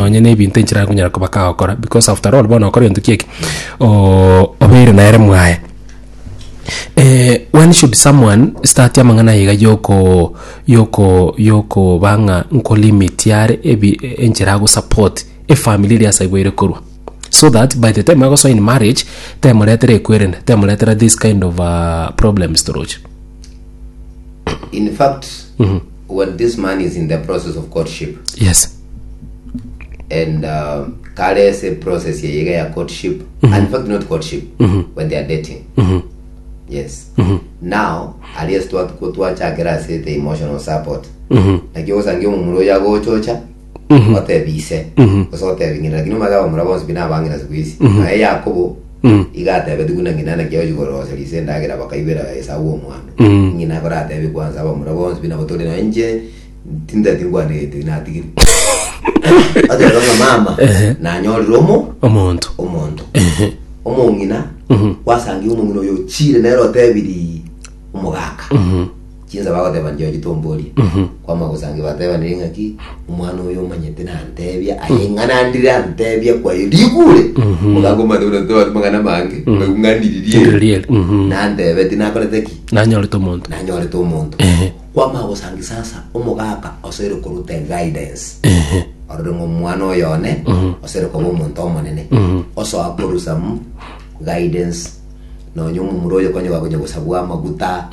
nonye nebinto enchera akonyara koba kagokora because after all bono okore egento ki'eki ooh obeire nere mwaye. when should someone start amang'ana aye iga yokoo yokoo yokoo ba ng'a nko limit yare ebi enchera agosupport efamiri eria ase igwa ere korwa so that by the time agosoa in marriage temoretera ekwerende temoretera this kind of problems toroche. In fact, when this man is in the process of courtship, Yes. and uh, kare se process ya yega ya courtship and in fact not courtship when they are dating yes now alias twa twa- twachakera ase the emotional support nakio osange omomura oyo agochocha otebise ase otebing'ina lakini omanye abamura bonsi buna abang'ina siku isi naye yakobo igatebeti buna ng'ina naki ochigoroseria ase endagera bakaibera esabu omwando ng'ina koratebe kwanza abamura bonsi buna botori naye inche Tintati ngwane gento inatigire. Aterero ng'a mama Ehe. nanyorire omo omonto omonto Ehe. omong'ina Mhm. wasangirie omong'ina oyo ochire nere otebiri omogaka chinsa bagoteba njio chitomborie Mhm. kwama gosangi batebanire ng'aki omwana oyo omanyete nantebia aye ng'anandire antebia kwaye rigure Mhm. omogaka omatebire tobari mang'ana mange Ndiririe. ng'aniririe Mhm. nantebeti nakorete ki nanyorete omonto nanyorete omonto Ehe. kwama gosangisa asa omogaka osoire koruta eguidance orore ng'a omwana oyo one osoire koba omonto omonene osoa korusa mu guidance nonya omomura oyo konya bakonya gosabwa amaguta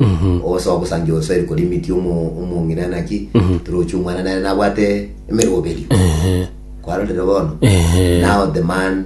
osoa gosangia osoire korimiti omo- omong'ina naki torochi omwana nere nabwate emeroberio kwarorire bono now the man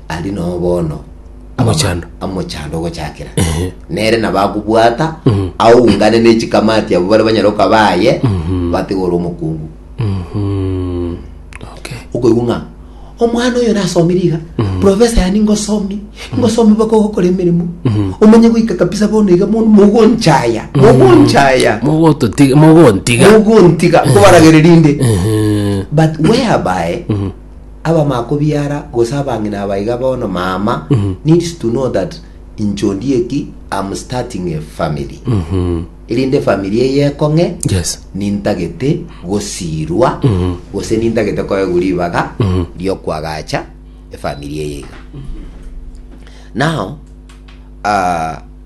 Aria nao bono Omochando. amochando ogochakera nere nabakobwata aungane nechikamati abo bare banyare okabaye batigore omokungu Mhm. Okay. okoigwa ng'a omwana oyo nasomire iga profesa yani ngosomi ngosomi baka ogokora emeremo omenye goika kabisa bono iga bono mogonchaya mogonchaya Mogototiga- mogontiga mogontiga kobaragereria inde Mhm. but whereby abamakobiara gose abang'ina aba iga bono mama needs to know that inche ondieki am starting a family erinde family eye ekong'e Yes. nintagete gosirwa gose nintagete koegwa ribaga riokwagacha efamiri eye iga now ah,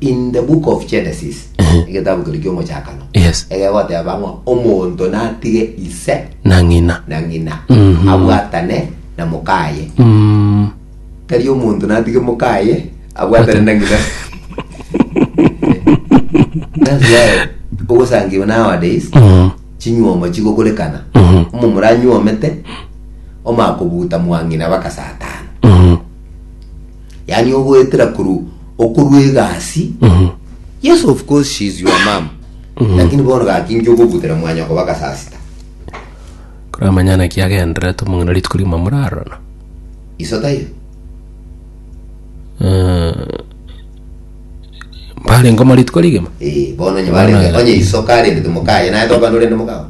in the book of genesis egetabu keria kiomochakano Yes. egegoteba ng'a omonto natige ise na ng'ina na ng'ina Mhm. abwatane na mokaye Mm, tari omonto natige mokaye abwatane na ng'ina That's why ogosangiwa nowadays mm, chinyuomo chigokorekana mhm, omomura anyuomete omakobuta mwang'ina baka saa tano mm, yaani ogoetera korwa okorwa egasi yes of course she is your mom lakini bono gaki inche ogobutera mwanyoko bagasasita Koramanya naki agenderete omong'ina rituko rigima morarorana. iso taiyo Eh, Mbarengoma rituko rigima. Eh, bono onye barenge onye iso karendete mokaye naye tokwana orende mokao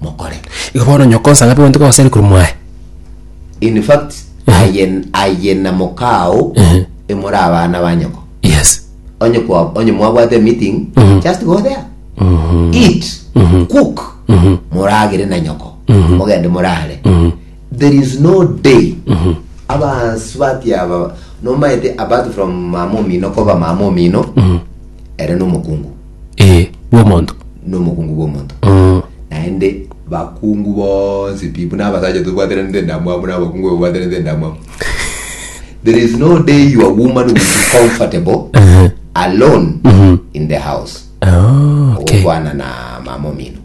mokore. Igo bono nyoko nsa ng'abe gwantoka goseri korwa mwaye? In fact, aye, aye na mokao Ehe. emore abana ba nyoko. Yes. Onye kwa, onye mwabwate meeting, Mhm. just go there. Mhm. Eat, Mhm. cook, Mhm. moragere na nyoko. Mhm. Mogende morare. Mhm. There is no day Mhm. abansu bati aba nomaete apart from mama omino koba mama omino Mhm. ere nomokungu ee bw'omonto nomokungu bw'omonto Mm. naende bakungu bonsi pi buna abasacha tobwateranete endamwamu buna abakungu babwateranete endamwamu there is no day your woman will be comfortable Ehe. alone in the house Ah, okay. okwana na mama omino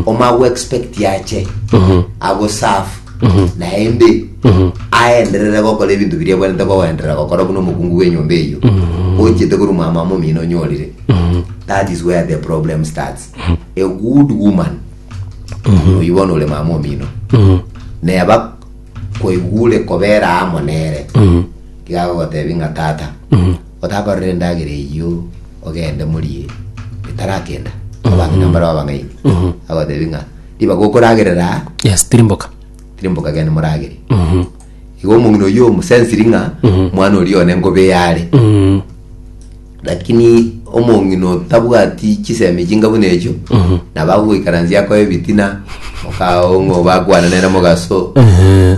omo agoexpecti ache agoserve naende aenderere gokora ebinto biria abwenerete koenderera gokora buna omokungu bw'enyomba eyio ochiete korwa omwamama omino onyorire that is where the problem starts a good woman oyu bono ore mama omino neba kwaigure kobera amo nere iga agogotebi ng'a tata Otakorera endagera eyio ogende morie etarakenda abang'ina mbare abang'aini agotebi ng'a ribaga okoragerera aa yes tiri mboka tiri mboka gende moragere Mhm. igo omong'ina oyio omosensiri ng'a mwana oria one ngobe yare Mhm. lakini omong'ina otabwati chisemi echi nga buna echio Mhm. nabo agogoikaransia akoe ebitina okaao ng'a obakwana nere mogaso Ehe.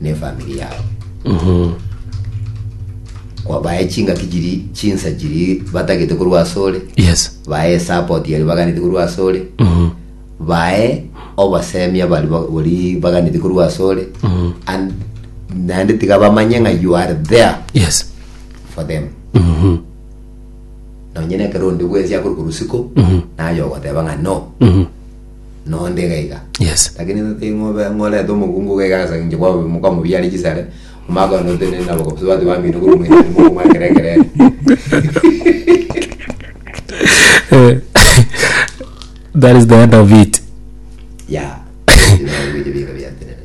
ne efamiri yao kwabaye chingaki chiri chinsa chiri batagete korwa asore Yes. baye esapoti yari baganete korwa asore baye obasemia bari ba- bari baganete korwa asore and naende tiga bamanye ng'a you are there Yes. for them nonye nekero onde bwensi akore korusiko naye ogoteba ng'a no nonde iga iga Yes. lakini nte ng'obe ng'orete omokungu iga iga ase inche kwabo mokamobiare chisare omaka one otenene nabo gose bati bambino korwa omonyene mokomwa ekero ekerere Eh, that is the end of it ya bigo biatenene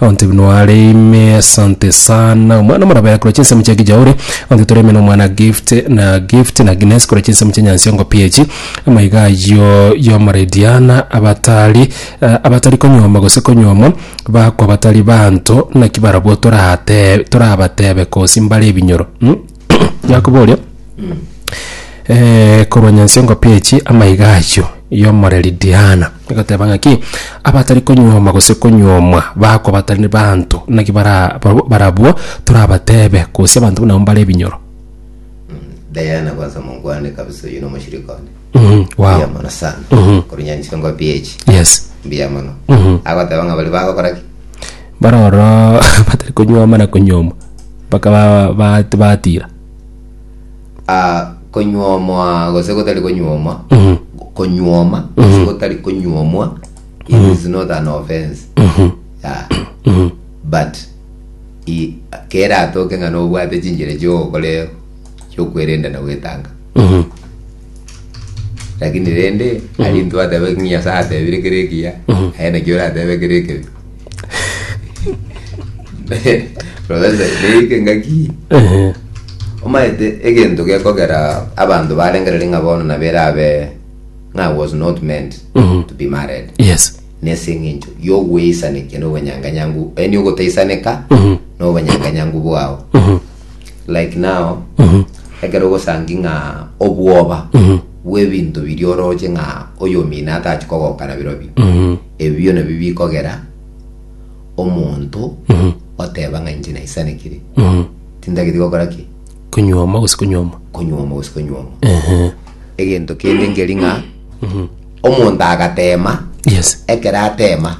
Onte buna are ime asante sana omwana omoraba yakora chinsemo chia kijauri onte tore ime na omwana gift na gift na gines kora chinsemo chia nyansiongo piechi amaiga ayio yomorediana abatari eh, abatari konyuoma gose konyuomwa bakwa batari banto naki barabwo torate torabatebe kosi mbare ebinyoro mm? Yakobo oria, eh, korwa nyansi y'engopi echi amaiga ayio y'omoreri Diana, egoteba ng'aki, Abatari konyuoma gose konyuomwa bakwa batari banto, naki bara barabwo barabwo torabatebe, gose abanto buna abwo mbare ebinyoro. Diana kwanza mokwane kabisa oyo nomoshirika one Mhm, wow. mbuya mono sana Mhm. korwa nyansi engopi echi Yes. mbuya mono Mhm. agoteba ng'a bari bagokora ki Baroro batari konyuoma na konyuomwa. Bakaba batiira. A Konyuomwa gose gotari konyuomwa, konyuoma gose gotari konyuomwa, it is not an offense. Yeah. But i- keratoke ng'a nobwate chinchera chi'ogokora chi'okwerenda na gwetanga. lakini rende ari intwe atebe ng'a nyasae atebire kere ekiya aye naki oratebe kere ekebi profesa neike ngaki Ehe. omaete egento gekogera abanto barengereri ng'a bono nabo erabe ng'a I was not meant Mhm. to be married yes nese eng'encho yogweisanekia nobonyanganyangu yaani ogotaisaneka Mhm. nobonyanganyangu bwao Mhm. like now ekero ogosangi ng'a obwoba bw'ebinto biria oroche ng'a oyomino atachi kogokana birobio ebio nabio bikogera omonto oteba ng'a inche naisanekire tintageti gokora ki konywoma gose konywoma konywoma gose konywoma egento kende nkeri ng'a Omonto agateema, Yes. ekero ateema,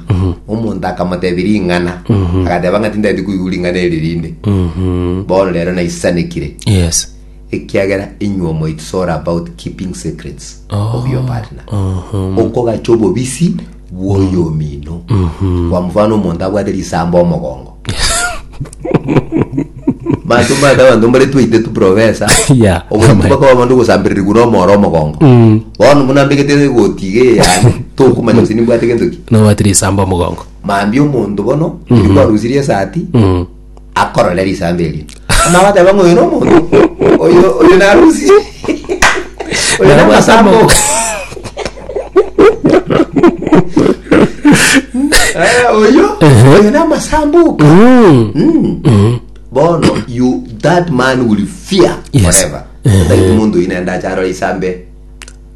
omonto akamotebia ring'ana, agateba ng'a tindeti koigwa ring'ana eri rinde. Bono rero naisanekire, Yes. ekiagera inywe omo it's all about keeping secrets of your partner. Okogacha obobisi bw'oyomino. Kwa mfano omonto abwate risambo omogongo, banto mbata abanto mbare twaite tu professor Yeah. omonto mpaka omonto ogosambererigwa na omoro omogongo Mm. bono buna mbegete egoti iga eyane tokumanya gose nimbwate gento ki nobwati risamba omogongo mambia omonto bono Mm. kwarusirie esati Mm. akorore risambe erio Amang'ana agateba ng'a oyo nomonto, oyo oyo narusi. Oyo namasambo. Eh, oyo oyo namasambuka. Mm. bono you that man will fear Yes. forever Otagete omonto oyi nende acharo isambe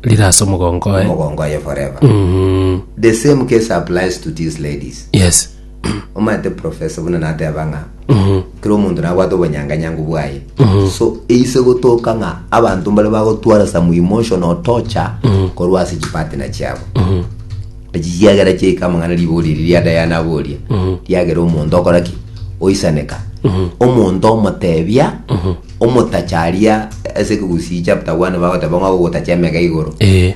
rirase omogongo oye omogongo aye forever the same case applies to these ladies yes omaete profesa buna nateba ng'a kera omonto nabwate obonyanganyangu bwaye so eise gotoka ng'a abanto mbare bagotwara some emotional torture korwa ase chipatina chiabo echi chiagera chiaika amang'ana ribogo riri ria dayana aboria riagera omonto okora ki oisaneka omonto omotebia omotacharia ase ekegusii chapter one bagoteba ng'a ogotacha emega igoro Eh.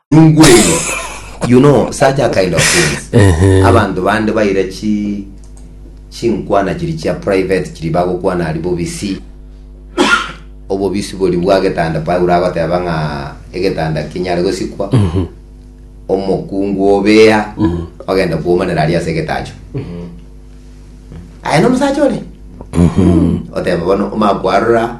Ningweri, you know such a kind of things. Ehe. Abanto bande baira chi chinkwana chiri chia private chiri bagokwana ari bobisi. Obobisi bori bwa getanda Paulo agoteba ng'a egetanda kinyare gosikwa. Omokungu obea ogenda kuomanera ari ase egetacho. Aye nomusacha ore. Oteba bono omakwarora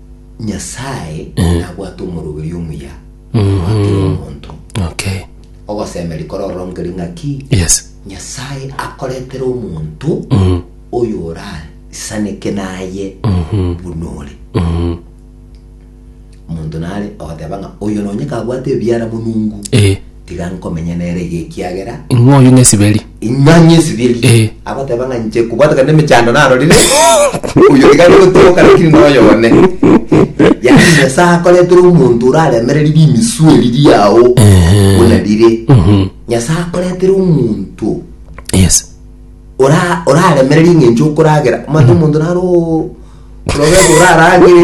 nyasae nabwate omoroberio omuya oa kera omonto Okay. ogosemeria kororongeri ng'aki Yes. nyasae akoretera omonto oyo orasaneke naye buna ore omonto nare ogoteba ng'a oyo nonye kabwate ebiara monungu Eh. Tiga nkomenya nere iga ekiagera. Ing'o oyio ng'esiberi? Ing'o ng'esiberi? Eh. Agoteba ng'a inche kobwata kende emechando narorire, oyo iga agotoka lakini noyo one. Yaani Nyasae akoretera omonto oraremereri rimiswe riria ao buna rire. Nyasae akoretera omonto Yes. ora oraremereri ng'encho okoragera. Omanyete omonto naro ororete oraragere